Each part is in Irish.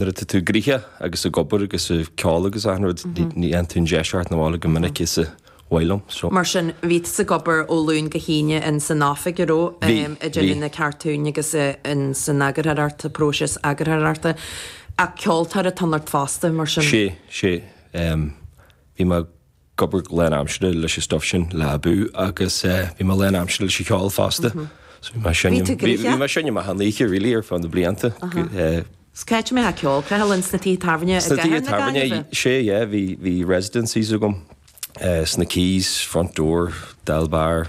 Nuair atá tú gnoitheach agus ag obair agus sa ceol agus achan rud ní fhaigheann tú an deis theacht 'na bhaile chomh minic is ba mhaith liom so. Mar sin bhí tú ag obair ó Luain go hAoine in san oifig a raibh Bhí, bhí. idir na cartúin agus in san eagarthóireacht, sa phróiseas eagarthóireachta. Ach ceoltóir atá ionat fosta mar sin. Sea, sea. Bhí mé. ag obair lán aimsire leis an stuif sin le Abú agus bhí mé lán aimsire leis an cheol fosta. So bhí mé ag seinm, bhí mé ag seinm achan oíche really ar feadh na blianta. Is caithfidh mé a rá ceol creathadh linn sna tithe tábhairne i gcathair na Gaillimhe. Sna tithe tábhairne, sea yeah, bhí residencies agam sna Quays, Front Door, Dáil Bar,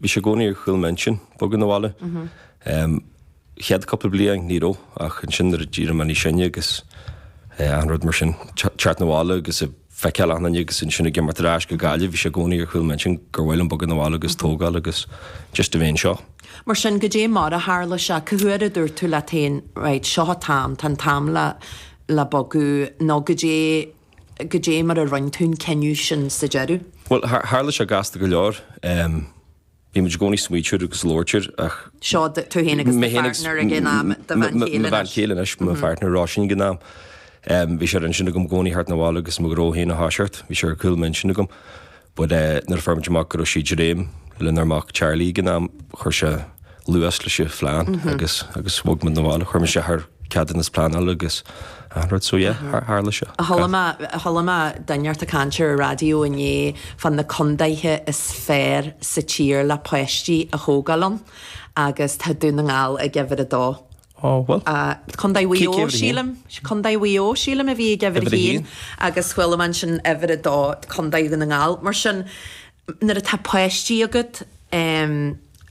Bhí sé i gcónaí ar chúl m'intinn bogadh 'na bhaile. Chéad cúpla bliain ní raibh ach ansin nuair a d'éirigh mé níos sine agus achan rud mar sin, teacht 'na bhaile agus ag feiceáil achan duine agus ansin ag imeacht ar ais go Gaillimh, bhí sé i gcónaí ar chúl m'intinn gur mhaith liom bogadh 'na bhaile agus tógáil agus just a bheith anseo. Mar sin, goidé mar a tharla sé? Cé huair a dúirt tú leat féin, right, seo an t-am, tá an t-am le bogadh nó goidé Goidé mar a rinn tú an cinneadh sin sa deireadh? Bhuel, tharla sé gasta go leor. Bhí muid i gcónaí ag smaoiteamh air agus ag labhairt air ach. Seo tú, tú féin agus do phairtneir ag an am, do bhean chéile anois. Mo bhean chéile anois, mo phairtneir Róisín ag an am. Bhí sé ar intinn agam i gcónaí theacht 'na bhaile agus mo ghnó féin a thoiseacht. Bhí sé ar chúl m'intinn agam. Bhuel, eh, nuair a fuair muid amach go raibh sí ag dréim lenár mac Charlie ag an am, chuir sé luas leis an phlean agus, agus bhog muid 'na bhaile. Chuir muid isteach ar ceadúnas pleanála agus achan rud, so yeah, thar, tharla sé. Chuala mé, chuala mé duine inteacht ag caint ar an raidió inné fan na contaetha is fearr sa tír le páistí a thógáil ann agus tá Dún na nGall ag uimhir a dó. Á, bhuel. Contae Mhaigh Eo, Cé a bhí uimhir a haon? sílim. Contae Mhaigh Eo, sílim, a bhí ag uimhir a Uimhir a haon haon. agus chuala mé ansin uimhir a dó, Contae Dhún na nGall. Mar sin, nuair atá páistí agat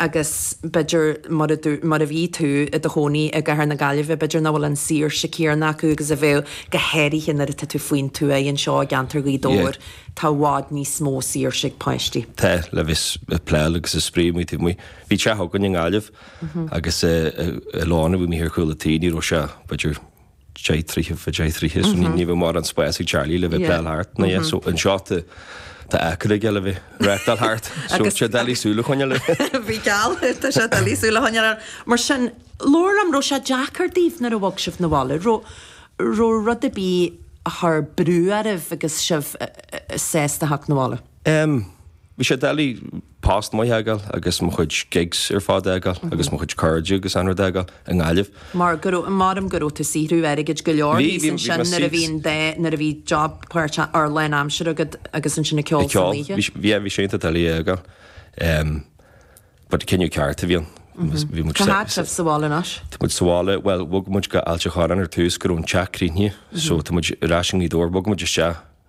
agus b'fhéidir mura dú, mura bhí tú i do chónaí i gcathair na Gaillimhe, b'fhéidir nach bhfuil an saoirse céanna acu agus a bheadh, go háirithe nuair atá tú faoin tuath anseo i gceantar Ghaoth Yeah. Dobhair, tá i bhfad níos mó saoirse ag páistí. Tá, le bheith ag pleáil agus ag spraoi amuigh taobh amuigh. Bhí teach againn i nGaillimh. Agus an lána a bhí amuigh ar chúl an tí, ní raibh sé b'fhéidir deich troithe fá deich troithe so ní ní bheadh mórán spás ag Charlie le bheith ag pleáil thart ná é. So anseo tá tá acra aige le bheith ag reáchtáil thart. So tá sé doiligh súil a choinneáil air. Bíodh geall air, tá sé doiligh súil a choinneáil air. Mar sin, labhair liom, raibh sé deacair daoibh nuair a bhog sibh 'na bhaile? Raibh raibh rud ar bith a chuir brú oraibh agus sibh i ndiaidh theacht 'na bhaile? Em, bhí sé doiligh. post maith a fhágáil agus mo chuid gigs ar fad a fhágáil agus mo chuid cairde agus achan rud a fhágáil i nGaillimh. Mar go raibh, maram go raibh tú saothrú airgid go leor thíos ansin nuair a bhí an dá, nuair a bhí job páirt, or lán aimsire agat agus ansin ag ceol san oíche. Ag ceol, yeah, bhí sé iontach doiligh a fhágáil but cinneadh ceart a bhí ann. Bhí muid, Cá fhad sibh sa bhaile anois? Tá muid sa bhaile, bhuel bhog muid go hAilt an Chorráin ar tús go raibh an teach críochnaithe so tá muid ar ais i nGaoth Dobhair, bhog muid isteach,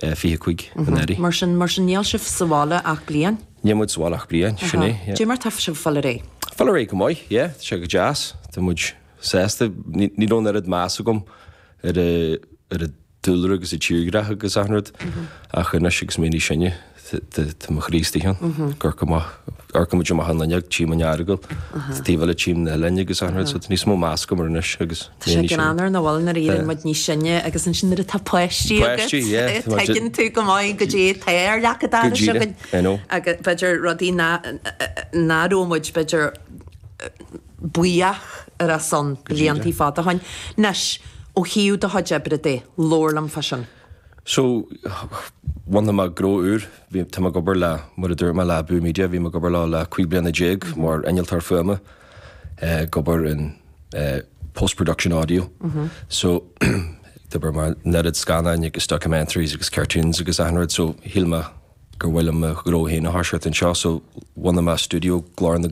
25 i ndáiríre. Mar sin, mar sin níl sibh sa bhaile ach bliain? Níl muid sa bhaile ach bliain, sin é. Caidé mar tá sibh ag fáil ar aghaidh? Fáil ar aghaidh go maith, yeah, tá sé go deas. Tá muid sásta, ní raibh an oiread meas agam ar an dúlra agus an tírdhreach agus achan rud ach anois agus mé níos sine, Tá mo chroí istigh ann, Corca Maith, amharcann muid amach an fhuinneog, Tím an Earagail, taobh eile Tím na hOileáin agus achan rud, so tá níos mó meas agam air anois agus mé Tá sé sin greannmhar nach bhfuil nuair a éiríonn muid níos sine agus ansin nuair atá páistí agat Páistí, yeah, tá muid- tuigeann tú go maith caidé tá ar leac an dorais díreach, againn I know. agus b'fhéidir rudaí nach raibh muid b'fhéidir buíoch ar a son blianta fada ó shoin. Anois, ó thaobh do chuid oibre de, labhair liom fá sin. So, bhunaigh mé gnó úr, bhí, tá mé ag obair le, mar a dúirt mé le Boo Media, bhí mé ag obair leo le cúig bliana déag mar innealtóir fuaime, ag obair in post production audio. So, ag obair ar an oiread scannáin agus documentaries agus cartoons agus achan rud, so shíl mé gurbh fhiú dom mo ghnó féin a thoiseacht anseo, so bhunaigh mé studio Glór na.